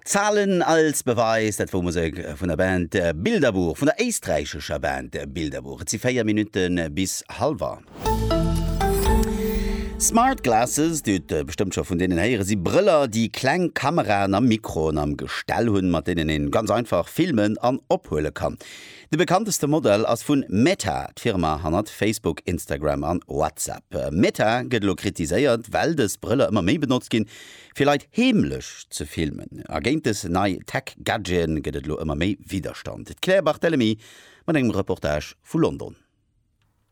Zahlen als Beweis, dat wor Musek vun der Band Bilderbuch, vun der éisträichescher Band Bilderbuch. Et si 4 Minutte bis hallwer. Smart Glasses, Dir hutt bestëmmt scho vun deenen héieren, si Brëller, déi kleng Kameraen a Mikroen am Gestell hunn, mat deenen een ganz einfach filmen an ophuele kann. De bekannteste Modell ass vun Meta, d'Firma hannert Facebook, Instagram an WhatsApp. Meta gëtt elo kritiséiert, well dës Brëller ëmmer méi benotzt ginn, fir Leit heemlech ze filmen. A géint dës nei Tech-Gadgeten gëtt et elo ëmmer méi Widderstand. D'Claire Barthelemy mat engem Reportage vu London.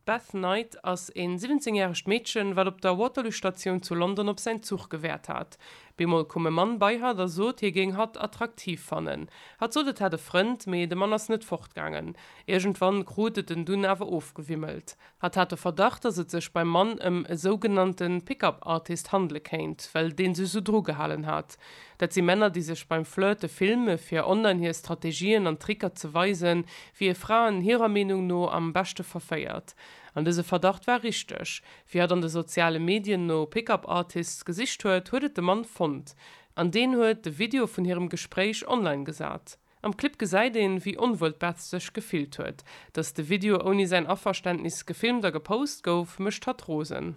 D'Beth Knight ass en 17 järegt Meedchen, wat op der Waterloo Statioun zu London op säin Zuch gewaart hat. Bemol koum e Mann bei hatt a sot, hie géing hatt attraktiv fannen. Hatt sot, et hätt e Frënd, mee de Mann ass net fortgaangen. Iergendwann krut et en dunn awer ofgewimmelt. Hatt hat de Verdacht, dass et sech beim Mann ëm e sougenannte Pick-up Artist handele kéint, well dee sech esou drugehalen hat. Dat si Männer, déi sech beim Flirte filme fir online hir Strategien an Tricker ze weisen, wier Fraen hirer Meenung no am beschte verféiert. An dëse Verdacht war richteg. Wéi hatt an de soziale Medien no Pick-up Artists gesicht huet, huet et de Mann fonnt. An deen huet de Video vun hirem Gespréich online gesat. Am Clip gesäit een, wéi onwuel d'Beth sech gefillt huet. Datt de Video ouni säin Averständnis gefilmt a gepost gouf, mécht hatt rosen.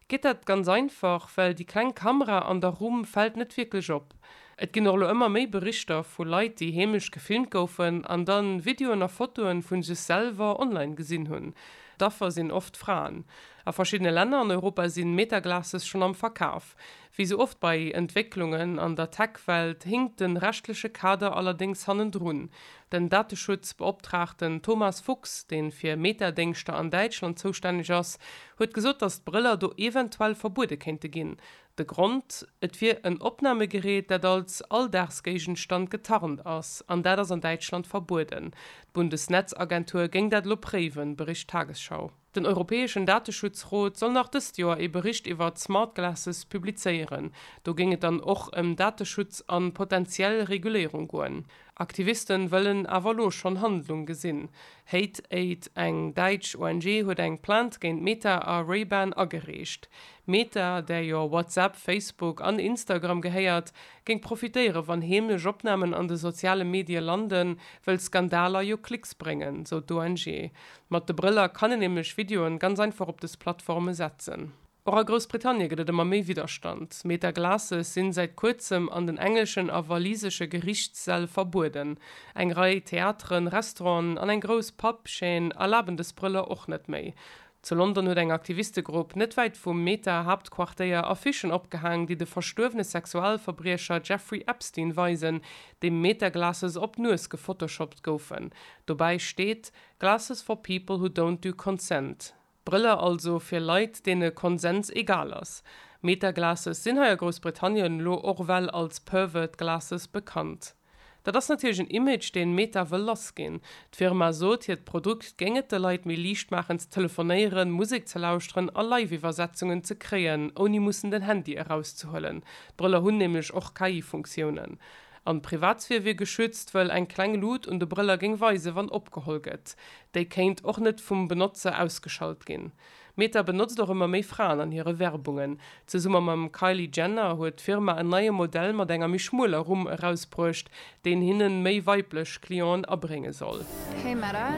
Geet dat? Ganz einfach, well déi kleng Kamera an der Rumm fält net wierklech op. Et ginn och elo ëmmer méi Berichter vu Leit, déi heemlech gefilmt goufen an dann Videoen a Fotoen vun sech selwer online gesinn hunn. D'Affer sinn oft Fraen. A verschiddene Länner an Europa sinn Meta-Glasses schonn am Verkaf. Wéi sou oft bei Entwécklungen an der Tech-Welt hinkt den rechtleche Kader allerdéngs hannendrun. Den Dateschutzbeoptraagten Thomas Fuchs, dee fir Meta-Déngschter an Däitschland zoustänneg ass, huet gesot, datt d'Brëller do eventuell verbuede kéinte ginn. De Grond, Et wier en Opnamegerät, dat als Alldagsgéigenstand getarnt ass, an dat ass an Däitschland verbueden. D'Bundesnetzagentur géing dat elo préiwen, bericht d'Tagesschau. Den europäeschen Dateschutzrot soll nach dëst Joer ee Bericht iwwer d'Smart Glasses publizéieren. Do géing et dann och ëm Dateschutz a potentiell Reguléierung goen. Aktiviste wëllen awer elo schonn Handlung gesinn. Hate Aid, eng däitsch ONG, huet eng Plainte géint Meta a Ray-Ban agereecht. Meta, där jo WhatsApp, Facebook an Instagram gehéiert, géing profitéiere wann heemlech Opnamen an de soziale Medie landen, wëll Skandaler jo Klicks bréngen, sou d'ONG. Mat de Brëller kann een nämlech Videoen ganz einfach op des Plattformen setzen. Och a Groussbritannien gëtt et ëmmer méi Widderstand. Meta Glasses sinn säit kuerzem an den englischen a walisesche Gerichtssäll verbueden. Eng Rei Theateren, Restauranten an eng grouss Pub Chaîne erlaben des Brëller och net méi. Zu London huet eng Aktivistegrupp net wäit vum Meta Haaptquartéier Affichen opgehaang, déi de verstuerwene Sexualverbriecher Jeffrey Epstein weisen, dem Meta Glasses op d'Nues gefotoshoppt goufen. Dobäi steet. Glasses for people who don't do consent, Brëller also fir Leit, deene Konsens egal ass. Meta-Glasses sinn hei a Groussbritannien lo och well als pervert glasses bekannt. Dat ass natierlech en Image, deen Meta wëll lass ginn. D'Firma sot, hiert Produkt géing et de Leit méi liicht maachen ze telefonéieren, Musek ze lauschteren a Live-Iwwersetzungen ze kréien, ouni mussen den Handy erauszehuelen. D'Brëller hunn nämlech och KI-Funktiounen. An d'Privatsphär wier geschützt, wëll eng kleng Lut un de Brëller géing weisen, wann opgeholl gëtt. Déi kéint och net vum Benotzer ausgeschalt ginn. Meta benotzt och ëmmer méi Fraen an hire Werbungen. Zesumme mam Kylie Jenner huet d'Firma en neie Modell mat enger méi schmueler Rumm erausbruecht, deen hinnen méi weiblech Clienten abrénge soll. Hey Meta,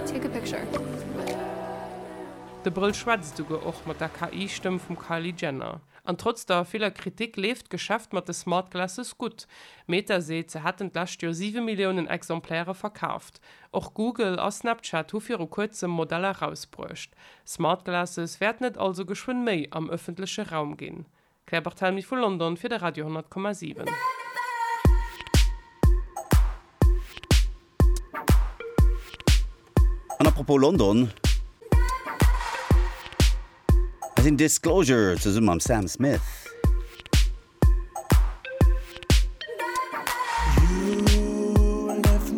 take a picture. De Brëll schwätzt esouguer och mat der KI-Stëmm vum Kylie Jenner. An trotz der viller Kritik leeft d'Geschäft mat de Smart Glasses gutt. Meta seet, se hätten d'lescht Joer siwe Milliounen Exemplaire verkaaft. Och Google a Snapchat hu viru kuerzem Modeller erausbruecht. Smart Glasses wäerten et also geschwënn méi am ëffentleche Raum ginn. Claire Barthelmy vu London fir de Radio 10,7. An à propos London, hei sinn Disclosure zesumme mam Sam Smith.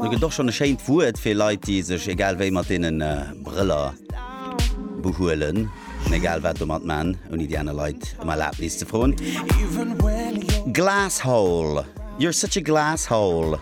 Do gëtt och schonn e schéint Wuert fir Leit, déi sech egal wéi mat deene Brëller behuelen an egal wat domat man, ouni déi aner Leit ëm Erlabnis ze froen. Glasshole, you're such a glasshole.